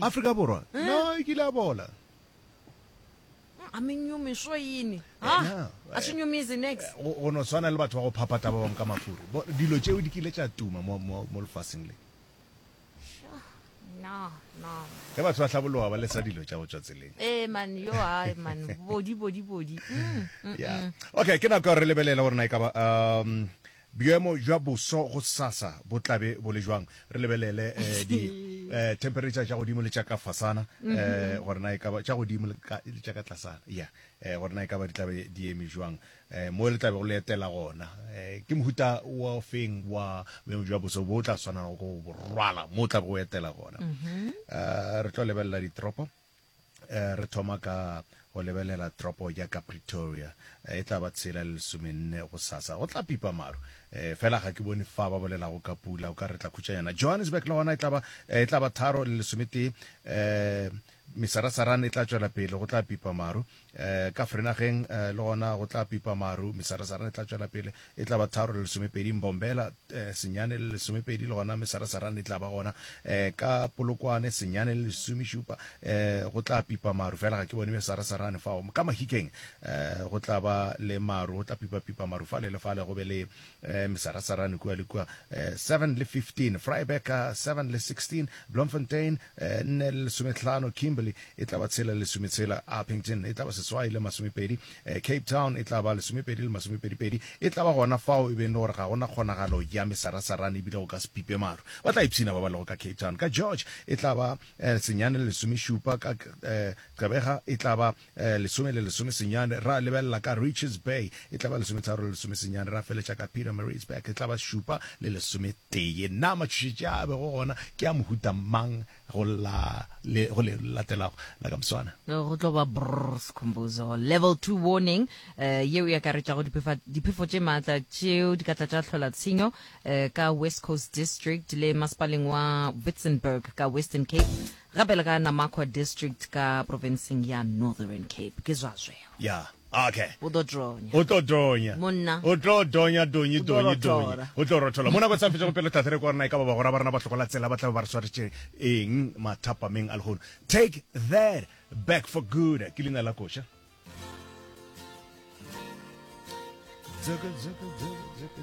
Afrika Borwa no e kile a bola. A menyumi swo yini? Ha a swi nyumizi nix. Go no swana le batho ba go phapata ba bangwe ka mafuri. Bo dilo tšeo di kile tša tuma mo mo mo lefaseng le. Sha na na. Ge batho ba hlabologa ba lesa dilo tša go tšwa tseleng. Eh man yo hai man body body body. Yeah. Okay ke nako re lebelele gore na e ka ba um Bjemo bja boso gosasa bo tla be bo le jwang? Re lebelele di temperature tša godimo le tša ka fasana gore na e ka ba tša godimo le tša ka tlasana, ya gore na e ka ba di tla be di eme jwang mo le tla bego le etela gona. Ke mohuta o feng wa bjemo bja boso bo o tla swanelago go bo rwala mo o tla bego o etela gona? Re tlo lebelela ditoropo. Eh, re thoma ka go lebelela tropo ya ka pretoria eh, e tla ba tshela le lesomenne go sasa go tla pipa maru eh, fela ga ke bone fa ba bolelago ka pula o ka re tla khutšanyana johannesburg le gona e tla ba eh, e tharo le lesometee eh, mesarasarane e tla tšwela pele go tla pipa maru Ka Vrynagheng le gona go tla pipa maru, mesarasarana e tla tšwela pele, e tla ba tharo le lesomepedi, Mbombela, senyane le lesomepedi, le gona mesarasarana e tla ba gona. Ka Polokwane, senyane le lesomešupa, go tla pipa maru, fela ga ke bone mesarasarane fao. Ka Mahikeng go tla ba le maru, go tla pipa-pipa maru fale le fale, go be le eh, Mesarasarane kua le kua eh, 7 le 15 Vryburg ka 7 le 16 Bloemfontein eh, 4 le lesometlhano Kimberley e tla ba tshela le lesometshela Upington e tla ba seswai le masomepedi eh, Cape Town e tla ba lesomepedi le masomepedipedi e tla ba gona fao e beng le gore ga gona kgonagalo ya mesarasarane ebile go ka se pipe maru ba tla ipshina ba ba lego ka Cape Town ka George e tla ba eh, senyane le lesomešupa ka eh, Gqebega e tla ba Lesome le lesomesenyane, ra lebelela ka Richards Bay, e tla ba lesometharo le lesomesenyane, ra feletša ka Pietermaritzburg, e tla ba šupa le lesometee. Na matšhošetše a a bego gona ke a mohuta mang go la le go le latelago la ka moswana? Go tlo ba brrr Sikhumbuzo. Level Two Warning, yeo e akaretšago dipefa, diphefo tše maatla tšeo di ka tla tša hlola tshenyo ka West Coast District le Masepaleng wa Witzenberg ka Western Cape. Gape le ka Namakwa District ka profenseng ya Northern Cape. Ke zwa zweo. Ya, okay. O tlo donya. O tlo donya. Monna. O tlo donya, donyi, donyi, donyi. O tlo rothola. Mona go sa fetša go pelo tlhahla re kwa rena e ka ba bagora ba rena ba hlokola tsela ba tla be ba re swaretše eng mathapameng a lehono. Take that back for good ke leina la koša.